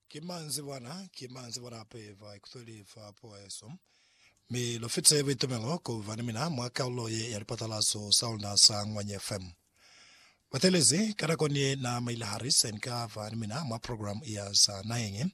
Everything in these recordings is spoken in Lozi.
Ki manzwi bona, ki manzwi bona hape ba ikutweli fa puo yesu. Mi lu fitise buitumelo ku ba ni mina mwa kalulo ye ya lipatalazo sa luna sa Ngwanye FM. Batelezi ka nakoni ye na Maila Harris ni ka ba ni mina mwa program ya za naheñi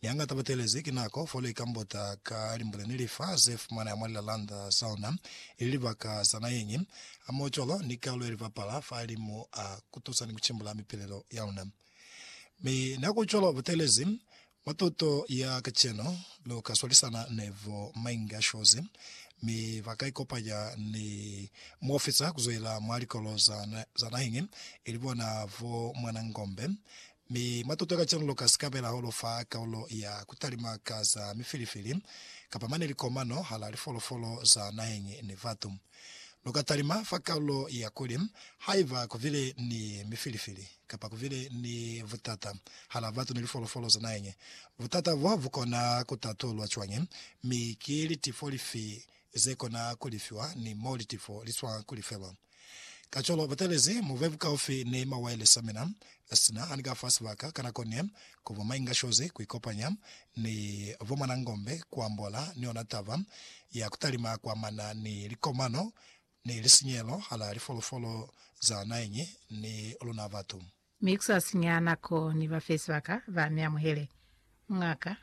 Ni hangata batelezi ki nako fo lika mbota ka limbule ni lifa ze fumana ya mwa lilalanda za ona, ili libaka za na yeñi. A mo cwalo ni kalulo ye libapala fa limu a kutusa ni kucimbula mipilelo ya luna. Mi na ku cwalo batelezi mwa tuto ya kacenu, lu ka swalisana ni bo Mainga Shozi, mi ba ka ikopanya ni muofisa kuzwelela mwa likolo za naheñi, ili bona bo Mwanangombe, Mi matuto ka cwalo ka sikabela holofa kaulo ya kutalima ka za mifilifili, kapa mane likomano hala lifolofolo za naheñi ni batu. Lu ka talima fa kaulo ya kuli, Haiba ku bile ni mifilifili, kapa ku bile ni butata hala batu ni lifolofolo za naheñi, butata bo bu kona ku tatulwa cwañi, mi ki litifo lifi ze kona ku lifiwa ni mo litifo li swa ku lifelwa? Kacwalo, batelezi mo be bukaufi ni mawailesi a mina, sina ani ka fa sibaka ka nako ne ku ba mainga shozi ku ikopanya ni bo Mwanangombe ku ambola ni ona taba ya ku talima kwa mana ni likomano ni lisinyehelo hala lifolofolo za naheñi ni luna batu. Mi ku sa sinya nako, Ni ba fe sibaka ba mi amuhele, M'ngaka.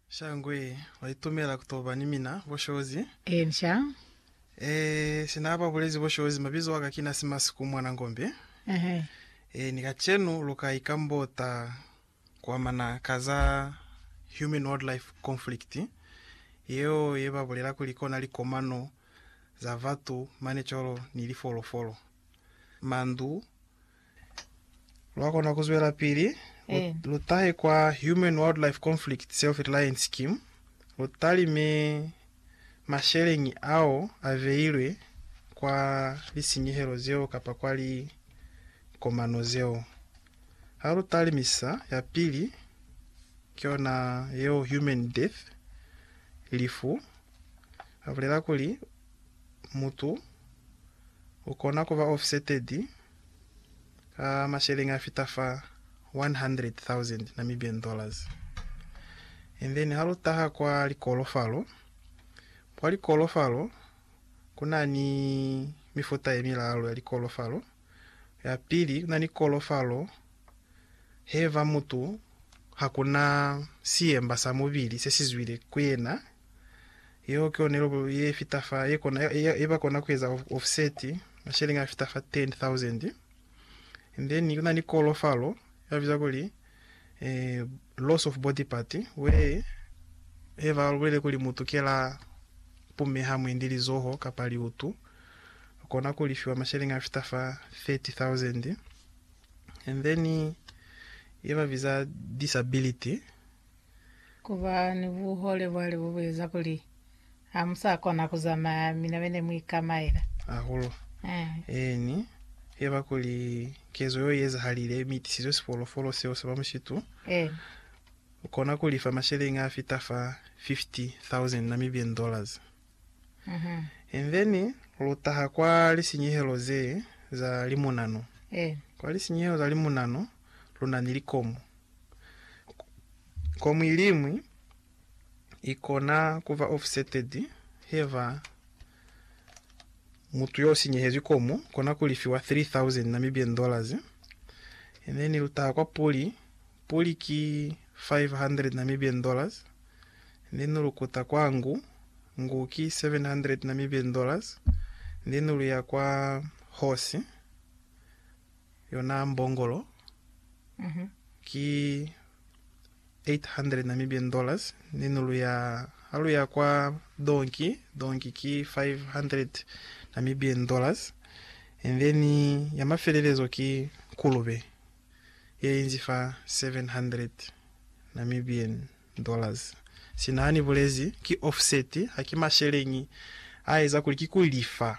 Shangwe, wa itumela ku to ba ni mina, Boshozi? Ee, ni sha. Ee, si na ba bulezi, Boshozi, mabizo waka ki na Simasiku mwana Ngombe. Ehe. Ee, ni kacenu lu ka ikambota ku amana ka za human-wildlife conflict, yeo ye ba bulela kuli kona likomano za batu mane cwalo ni lifolofolo, mandu, Lwa kona ku zwelapili lu, Eh. lu tahe kwa Human Wildlife Conflict Self-Reliance Scheme, lu talime masheleñi ao a beilwe kwa lisinyehelo zeo kapa kwa likomano zeo. Ha lu talimisa, ya pili ki yona yeo human death, lifu. Ba bulela kuli, Mutu u kona ku ba offsetted ka masheleñi a fita fa 100,000 Namibian dollars. And then ha lu taha kwa likolofalo, kwa likolofalo ku na ni mifuta ye milalu ya likolofalo. Ya pili, ku na ni kolofalo he va mutu ha ku na siyemba sa mubili se si zwile ku yena Yeo ki yona ilobo ye fita fa ye kona ye ba kona ku eza offset masheleng a fita fa 10,000. And then kuna ni kolo falo ya biza kuli eh, loss of body part where he ba bulele kuli mutu ke la pumeha mwendi lizoho kapa liutu kona ku lifiwa masheleng a fita fa 30,000. And then ye ba biza disability. Ku ba ni buhole bwa libu bu eza kuli ha mu sa kona ku zamaya mi na be ne mu ikamaela. Hahulu. Eeni, i ba kuli kezo yeo i ezahalile mi i tisizwe sifolofolo seo sa ba mushitu. Eeni. U kona ku lifa masheleñi a fita fa 50,000 Namibian dollars. And then lu taha kwa lisinyehelo ze za limunano. Eeni. Kwa lisinyehelo za limunano. lu na ni likomu. Komu iliñwi i kona ku ba offsetted heba mutu yo sinyehezwi komu kona ku lifiwa 3,000 Namibian dollars, and then lu taha kwa puli, puli ki 500 Namibian dollars, and then lu kuta kwa ngu, ngu ki 700 Namibian dollars, and then lu ya kwa horse, Yona mbongolo ki N800 Namibian dollars ni nulu ya ha lu ya kwa donki, donki ki N500 Namibian dollars, and then ya mafelelezo ki nkulube ye inzi fa N700 Namibian. Dollars. Sina hani bulezi ki offset ha ki masheleñi a eza kuli ki ku lifa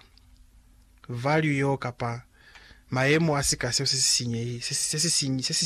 value yo kapa mayemo a sika seo se si sinyehi, se si, se si, se si,